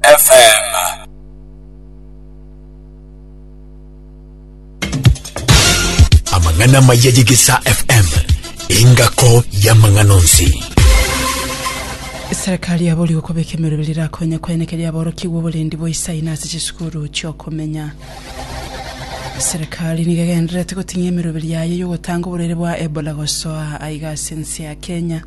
FM. Amang'ana maya y'egesaa FM engako y'amang'ana onsi. Serikali yaboorigwe kobeka emerobera rirakonye koenekeria aborokigwa oborendi bwa isai na ase chisukuru chiokomenya. Serikali nigo egendererete goting'ia emeroberi yaye y'ogotanga oborwaire bwa Ebola gosoa aiga ase ense ya Kenya.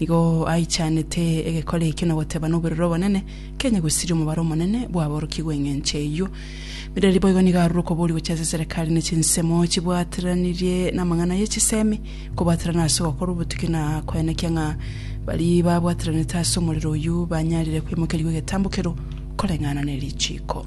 Nigo aichanete egekora ekio na goteba noborere obonene, Kenya gosiria omobaro omonene bw'aborokigwa engencho eyio. Mireri boigo nigo arure okoboria gochia ase eserekari ne chinsemo chibwateranirie namang'ana ye chisemi, kobwaterana ase ogokora obotuki na koenekia ng'a baria babwateranete ase omorero oyio banyarire kwemokerigwa egetambo kerwo koreng'ana ne richiiko.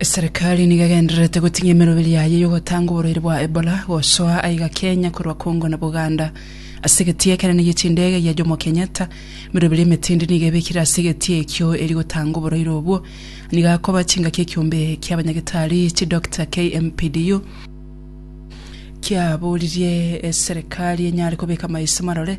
Eserekari nigo egendererete goting'ia emeroberi yaye y'ogotanga oborwaire bwa Ebola gosoa aiga Kenya korwa Congo na Buganda. Ase egetii ekenene gie chindege gia Jomo Kenyatta, emeroberi emetindi nigo ebekire ase egetii ekio eria gotanga oborwaire obwo. Nigo akoba chingaki ekiombe kia abanyagetari chidoctor KMPDU kiaboririe eserekari enyare kobeka maiso marore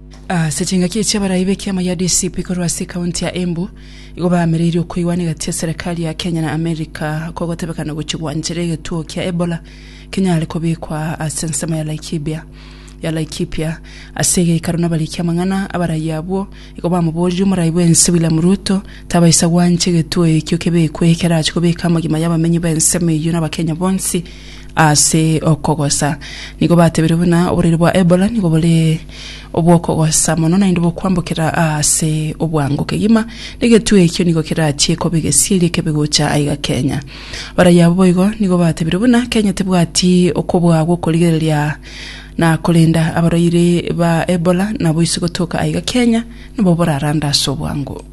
Ase chingaki echi abarai b'ekiama gia DCP korwa ase ekaunti ya Embu igo baamereirie okoigwana egati ya serikali ya Kenya na Amerika kogotebekana gochia gwanchera egetuo kia Ebola kenyare kobekwa ase ensemo ya Laikibia ya Laikipia. Ase egeikaro nabarikia amang'ana, abarai abwo igo bamoboririe omorai bw'ense William Ruto tabaisa gwancha egetuo ekio kebekwe ekerache kobeka amagima y'abamenyi b'ensemo eyio n'Abakenya bonsi ase okogosa. Nigo batebirie buna oboraire bwa Ebola nigo bore obw'okogosa mono naende bokwambokera aase obwango kegima, na egetwe ekio nigo kerachie koba egesieri ekebe gocha aiga Kenya. Abaraiyo abwo boigo nigo batebire buna Kenya tebwati okobua gw'okorigereria na korenda abarwaire ba Ebola nabo ise gotoka aiga Kenya nabo borarande ase obwango.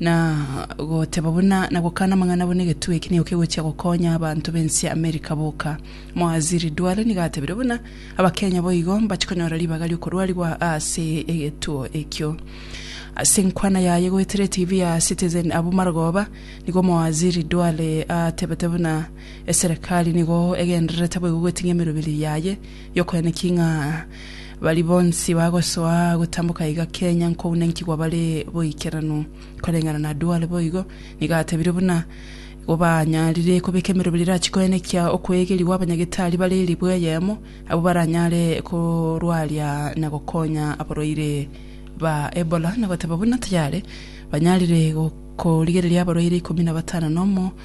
Na goteba buna na gokana amang'ana buna egetugi eki nigo kegochia gokonya abanto b'ense ya America boka. Mowaziri Duale nigo atebire buna Abakenya boigo mbache konyora ribaga ri'okorwarigwa ase egetuo ekio. Ase enkwana yaye goetera etibi ya Citizen abwo Marogoba, nigo Mowaziri Duale atebete buna eserekari nigo egendererete boigo goeting'ia emeroberi yaye Yokwene ki ng'a baria bonsi bagosoa gotamboka iga Kenya nkounenkigwa bare boikeranu? Koreng'ana na Duale boigo, nigo atebire buna igo banyarire kobeka emerobera erachi koenekia okwegerigwa abanyagetari bare ribwe eyemo, abwo baranyare korwaria na gokonya abarwaire ba Ebola, na goteba buna tayare banyarire korigereria abarwaire ikomi na batano na omo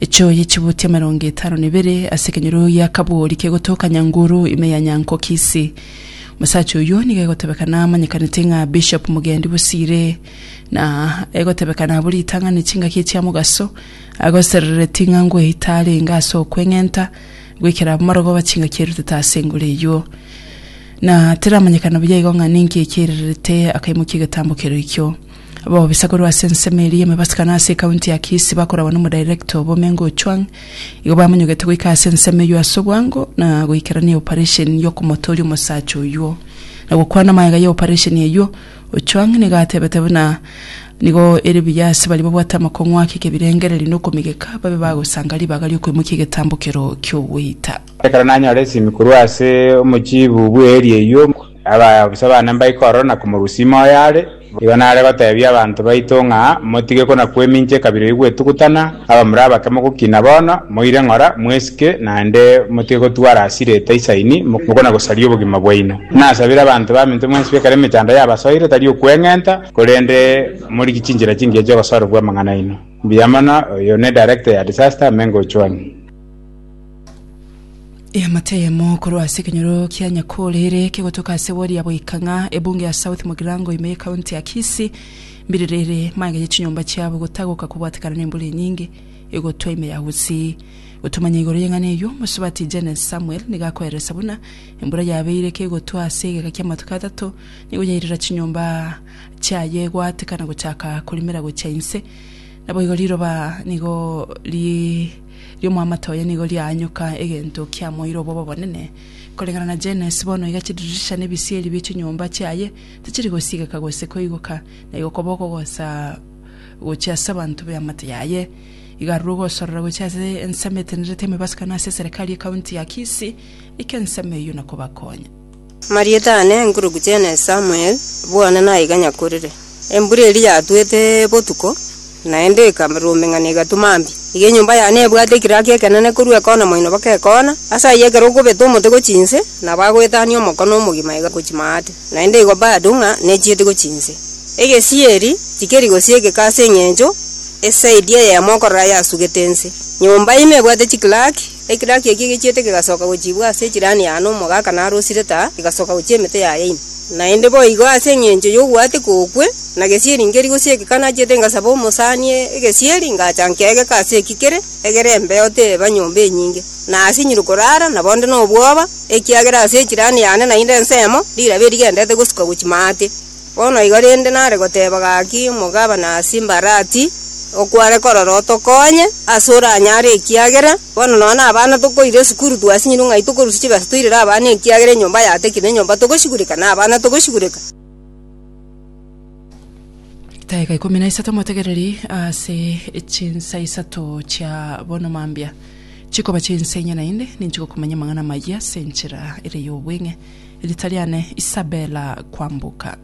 Echoyi chibuti emerongo etano na ebere ase ekenyoro gia kaboori kegotoka Nyanguru ime ya Nyankokisi. Omosacha oyio nigo egotebekana amanyekanete ng'a Bishop Mugendi Bosire na egotebekana abwo ritang'ani chingaki echia mogaso agoserereti ng'a ngoeta arenge ase okweng'enta goikera abamorogoba chingaki erutete ase engoro eyio na teramanyekana buya igo ng'a ninki ekiirerete akaimokia egetambo keroikio. Abaofisa korwa ase ensemo eria y'emebasibano ase ekaunti ya Kisii bakoragwa n'omodirector obo Omengo Ochuang igo bamonyogete goika ase ensemo eyio ase obwango na goikerania eoparesheni y'okomotooria omosacha oyio na gokwana amagega y'eoparesheni eyio. Ochuang nigo atebete buna nigo ere buya ase baria babwate amakong'u ake ekebirengererio na okomigeka babe bagosanga ribaga ri'okoimokia egetambokero ki'ogweita. Ekero nanyora esimi korwa ase omochiibu bw'eeria eyio, Abaisa bane mbaikoro na komorusia ime oyo are, igo nare goteebia abanto baito ng'a, Motige kona-kwemincha ekabira eyio gwetugutana, abamura abake mogokina bono, moire ng'ora, mwesike, naende motige gotwara ase rieta isaini, mokona-gosaria obogima bwaino. Nasabire abanto baminto mwensi b'ekero emechando yabasoire, tari okweng'enta, korende morigie chinchera chingiya chi'ogosorerwa amang'ana aino. Mbuya mono, oyo ne Director ya Disaster, Mengo Ochwani. Eamate eyemo korwa ase ekenyoro kia Nyakore ere kegotoka ase wodi ya Boikang'a, ebunge ya South Mugirango ime y'ekaunti ya Kisii. Mbiriri ere maegete chinyomba chiabo gotagoka kobwatekana nembura enyinge egotwa ime ya Gusii. Gotomanya igoro y'eng'ana eyio, omosubati Jennes Samuel nigo akoereresa buna embura yabeire kegotwa ase egeka kia amatuko atato nigo yairera chinyomba chiaye gwatekana gochaka korimera gochia inse. Naboigo riroba nigo ri ri'omoamate oye nigo riaanyoka egento kiamoeire obobe obonene. Koreng'ana na Jannes, bono iga chidirisha na ebisieri bie chinyomba chiaye tichiri gosigeka gose koigoka, na igo koba okogosa gochia ase abanto b'eamate yaye. Igo arure ogosorora gochia ase ensemo etenerete emebasukano ase eserekari y'ekaunti ya Kisii, eke ensemo eyio na kobakonya. Marieta aane enkuruku chiane Samuel, bwane naiga nyakorire. Embura eria yatwete botuko, naende ekarurumeng'ana egatuma mbia. Iga enyomba yane ebwate ekiraki ekenene korwa ekona moino mpaka ekona, ase ayio ekero okobeta omote gochia inse, nabo agoetania omokone omogima iga gochia maate, naende igo bado ng'a nechieti gochia inse. Egesieri tikeri gosio egeka ase eng'encho esaidi eyemo okorora yasugete inse. Nyomba ime ebwate chikiraki. Ekiraki eke gechiete kegasoka gochiibwa ase echirani ya Anamu ogaka narosire taa, egasoka gochia emete ya Yaini. Naende boigo ase engencho y'ogoatia kokwe, na gesieri nkeri gose ekeka nachete ngasaba omosani egesieri, ngacha nkegeka ase eki kere, egere embeo teba nyomba enyinge, na asinyire korara, nabo nde nobwoba, ekiagera ase echirani yane naende ensemo, rirabe rigendete gosuka gochia maate. Bono igo rende nare goteba gaki omogabana ase embarati, okware korora otokonye ase oranyare ekiagera bono nonya na abana tokoira esukuru twasinyire ng'ai tokorusia chibesa toirere abana ekiagera enyomba yatekire na enyomba togosigureka na abana togosigureka. Edaika ikomi na isato motegereri ase chinsa isato chia bono mambia. Chikoba chi'ense enye naende ninchigokumanya amang'ana amayia ase enchera ere y'obweng'e. Riita riane Isabella Kwamboka.